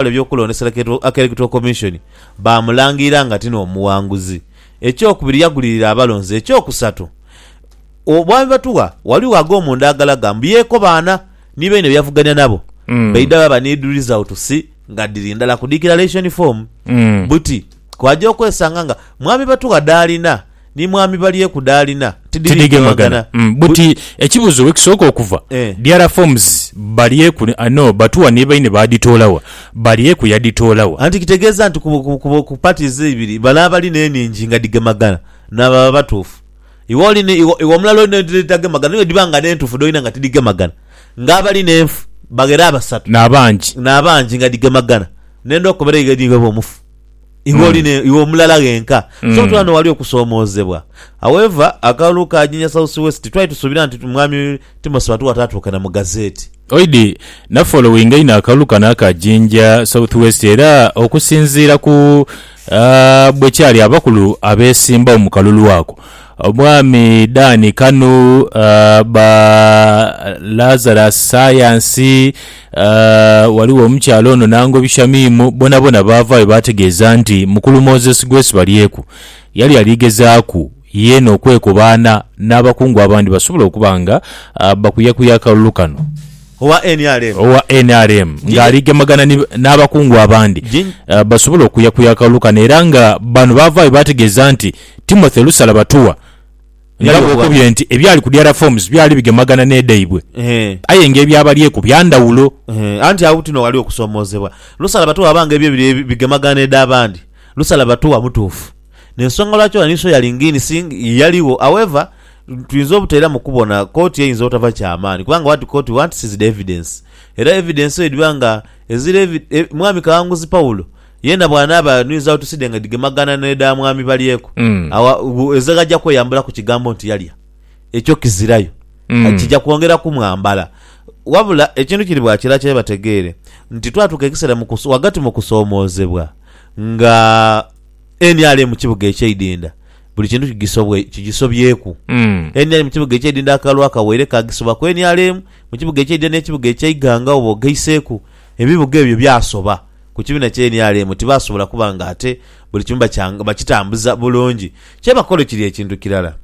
abakola eby'okulondesa k'Electoral Commission baamulangirira nga ti n'omuwanguzi. Ekyokubiri yagulirira abalonzi. Ekyokusatu, Obwami Batugha ghaligho ag'omu nda agalaga mbu yeekobaana ni baine bye yavugania nabo baidha baba ni results nga dhiri ndala ku Declaration Form. Buti kw'aja okwesanga nga Mwami Batugha dh'alina. ni mwami balyeku dh'alina tidhigemagana. Buti ekibuzo wekisooka okuva, DR forms Balyeku no Batuwa ni baine baadhitoola wa? Balyeku yadhitoola wa? Anti kitegeeza nti ku parties eibiri bale abali n'enhingi nga dhigemagana n'ababa abatuufu. Iwe oli ni iwe omulala oli n'edhitagemagana ni bwedhiba nga n'entuufu dh'olina nga tidhigemagana nga abali n'enfu baghera abasatu n'abangi nga dhigemagana n'endhoki okubeera eyo eri iwe oba omufu. Iwe oli ne, iwe omulala ghenka. So tuli ghano ghali okusoomoozebwa. However, akalulu ka Jinja South West twali tusuubira nti Mwami Timothy Batuwa ataatuuka na mu gazeeti. Oidi, nafollowinga inho akalulu kano aka Jinja South West era okusinziira ku bwe kyali abakulu abeesimbagho mu kalulu ako, Omwami Dan Kanu, ba Lazarus Sayansi, Ghaligho omukyala ono n'angobi Shamimu, bonabona baavaayo baategeeza nti mukulu Moses Gwesibalyeku yali ali gezaaku yeena okwekobaana n'abakungu abandi basobole okuba nga bakuyakuya akalulu kano. Owa nrm ng'ali gemagana ni n'abakungu abandi basobole okuyakuya akalulu kano era nga bano baavaayo baategeeza nti Timothy Lusalabatuwa, Nga era bw'okobye nti ebyali ku Diarra Forms byali bigemagana n'edhaibwe, aye nga ebyabalyeku bya ndhawulo. Anti agho tino ghali okusoomoozebwa. Lusala Batuwa aba nga ebye biri bigemagana n'edh'abandi, Lusala Batuwa mutuufu. N'ensonga lwaki ono ni Soya Lingini si yaligho. However, twinza obutaira mu kubona kooti eyinza obutava kya maani kubanga what court wants is the evidence. Era evidence eyo edhiba nga ezira evi, Mwami Kawanguzi Paulo, Yeena bw'anaaba anwizagho tuside nga dhigemagaana n'edha mwami balyeku, agho ezira aja kweyambulaku kigambo nti yalya. Ekyo kizirayo. Kija kwongera kumwambala. Wabula ekintu kiri bwa kira kye bategeere nti twatuuka ekiseera mu ku, ghagati mu kusoomoozebwa nga nrm kibuga ekyeidinda buli kintu kigisobwe, kigisobyeku. Nrm kibuga ekyeidinda akalulu akawaire kaagisoba ku nrm mu kibuga ekyeidinda n'ekibuga eky'eighanga oba ogaiseeku, ebibuga ebyo byasoba. ku kibiina kya nrm tibaasobola kuba nga ate buli kimu bakitambuza bulungi. Kye bakola kiri ekintu kirala.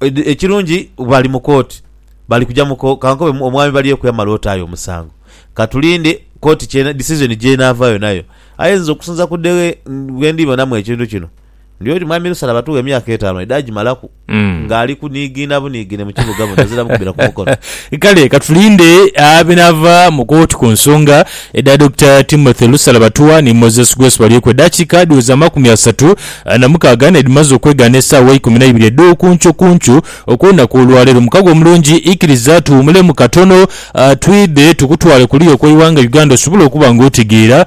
Ekirungi bali mu kooti, bali kuja mu kooti. Ka nkobe omwami Balyeyo kweyamala otaayo omusango. Ka tulinde kooti, decision gy'enaava yonayo. Aye nze okusinza ku deghe bwe ndibonamu ekintu kino, Ndi oti Mwami Lusala batuwe emyaka etaanu aidha agimalaku ng'ali kuniigiina buniigiine mu kibuga buno aziramu kubira ku mukono. Kale katulinde ebinaava mu kooti ku nsonga edha Dokita Timothy Lusala Batuwa ni Moses Grace Balyeku. Edaakiika dhiweza amakumi asatu na mukaaga n'edhimaze okwegaana esaawa eikuminaibiri edh'okuncukuncu okw'olunaku olwaleero. Mukago omulungi, ikiriza tuwumulemu katono twidhe tukutwale kuliya okw'eighanga Uganda osobole okuba ng'otegeera